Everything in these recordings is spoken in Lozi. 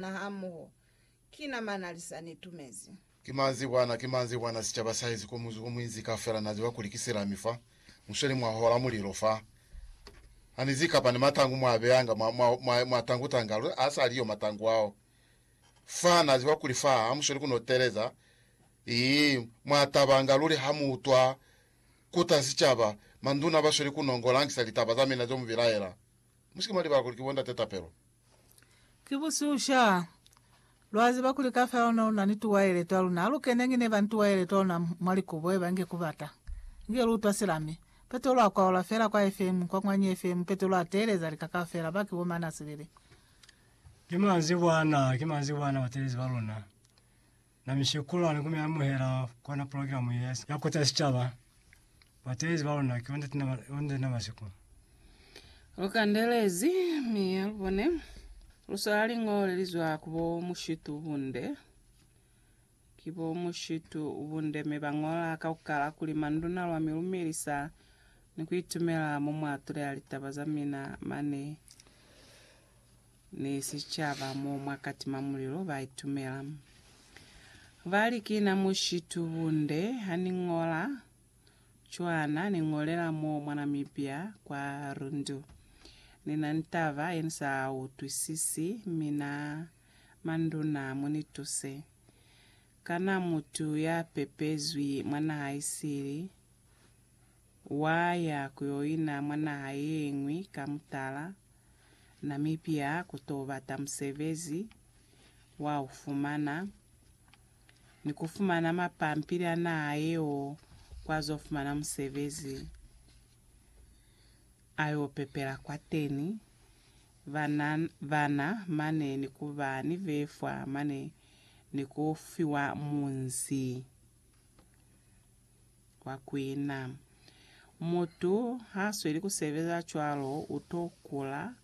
na hamoho. Ki na mana li sa ni tumezi. Ki manzi kwana, ki manzi kwana, sicaba saizi ko muzi ko muinzi kafela na ziba kuli ki silami fa, musweli mwa hola mulilo fa. Ha ni zikapa ni matangu mwa beyanga mwa, mwa, mwa, mwa tangu tanga, lu, ha sa liyo matangu ao. Fa, na ziba kuli fa ha musweli kuno teleza. Ii, mwa tabanga luli ha mu utwa kuta sicaba, manduna basweli kuno ngo langisa litaba za mina zo mu bilaela. Musike mwa libala kuli ki bo ndate tapelo. Ki busiusha. Lwa ziba kuli kafela luna luna ni tuwaele twa luna. Alu keneñi neba ni tuwaele twa luna mwa likubo, eba nge ku bata. Nge lu utwa silami. Petelo a kwaola fela kwa FM, kwa mwanyi FM, Petelo a teeleza lika kafela, ba ki bo mane a sibili. Ki manzibwana, ki manzibwana batelezi ba luna. Na mishekulu hane kume amuhela kona program ye ya, ya kuta sicaba batezi ba luna ki onde tina onde tina masiku. Lu kandelezi mi lu bone lu swala lingole li zwa ku bo mushitu bunde. Ki bo mushitu bunde mi ba ngola kaukala kuli manduna lwa mi lumelisa ni ku itumela mo mwa tuleha litaba za mina mane ni sicaba mo mwa katima mulilo ba itumela. Ba li, Ki na mushitu bunde ha ni ñola cwana ni ñolela mo mwa Namibia kwa Rundu. Ni na ni taba ye ni sa utwisisi, mi na manduna mu ni tuse. Kana mutu ya pepezwi mwa naha isili wa ya ku yo ina mwa naha ye ñwi ka mutala? Namibia ku to bata musebezi wa u fumana ni ku fumana mapampili a naha yeo kwa zo fumana musebezi a yo pepela kwateni bana bana mane ni ku ba ni befwa mane ni ku fiwa munzi. kwa kwina. Mutu ha sweli ku sebeza cwalo u to kula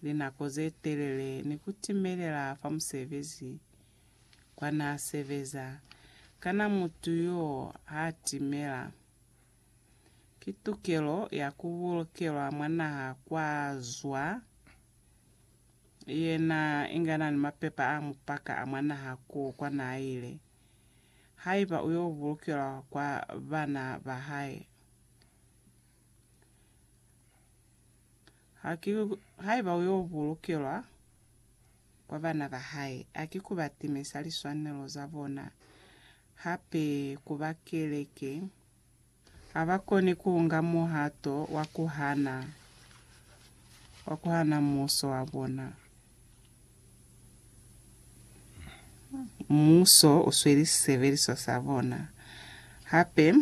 linako ze telele ni ku timelela fa musebezi kwa n'a sebeza. Kana mutu y'o ha timela? Ki tukelo ya ku bulukelwa mwa naha kwa zwa yena inga n'a ni mapepa a mupaka a mwa naha k'o kwa n'a ile. haiba u yo bulukelwa kwa bana ba hae. Ha ki, haiba u yo bulukelwa kwa bana ba hae, ha ki ku ba timisa liswanelo za bona, hape ku ba keleke Habakoni kuunga muhato wa kuhana, wa kuhana muuso wa bona. Muuso usweli sisebeliso sa bona. Hape,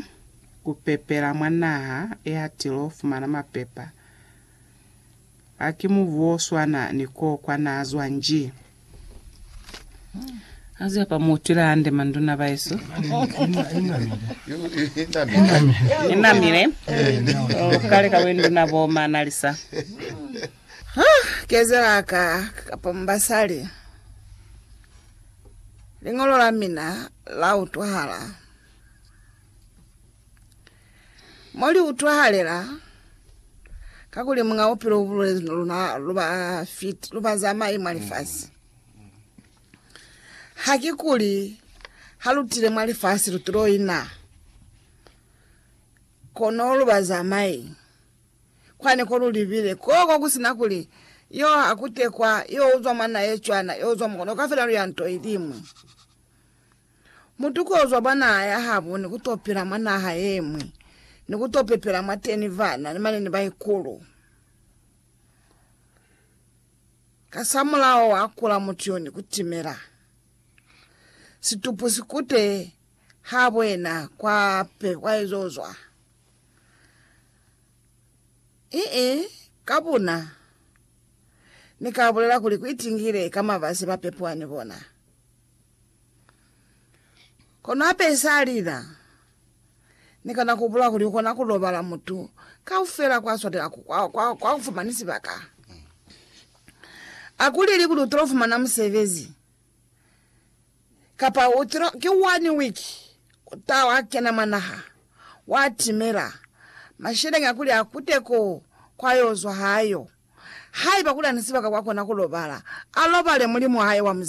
kupepela mwa naha ehatilo fumana mapepa. Ha ki mubu o swana ni ko kwa na zwa nji. Ha ze pa mu twila hande manduna baesu. I namile. O kale ka bwenduna bo Manalisa. Ha kezela ka kapa mu basali. Liñolo la mina la utwahala. Mo li utwahalela, kakuli Muñ'a Bupilo u bulezi no luna lu ba fiti, lu ba zamai mwa lifasi. Ha ki kuli ha lu tile mwa lifasi lu tulo ina, kono lu ba zamai. Kwani ko lu libile, ko ko ku si na kuli, Yo a kutekwa, yo uzwa mwa na ye cwana, yo uzwa mwa, kono kaufela lu ya nto iliñwi. Mutu ko zwa mwa naha ya habo ni ku to pila mwa naha ye ñwi, ni ku to pepela mwateni bana ni mane ni baikulu. Kasamulaho wa kula mutu yo ni ku timela. Situpu si kute habo yena kwa pe kwa ezo zwa. Ii, Ka buna, Ni ka bulela kuli ku itingile ka mabasi ba pepiwa ni bona. Kono hape sa lila, Ni kana ku hupula kuli u kona ku lobala mutu kaufela kwa swatela ku- kwa- kwa- kwa ku fumani sibaka. A ku leli kuli u tilo fumana musebezi, kapa u tilo, ki one week u taha wa kena mwa naha, wa timela, masheleñi a kuli a kute ko kwa yo zwa ha yo. Haiba kuli a ni sibaka kwa kona ku lobala, a lobale Mulimu wa hae wa Muzimu.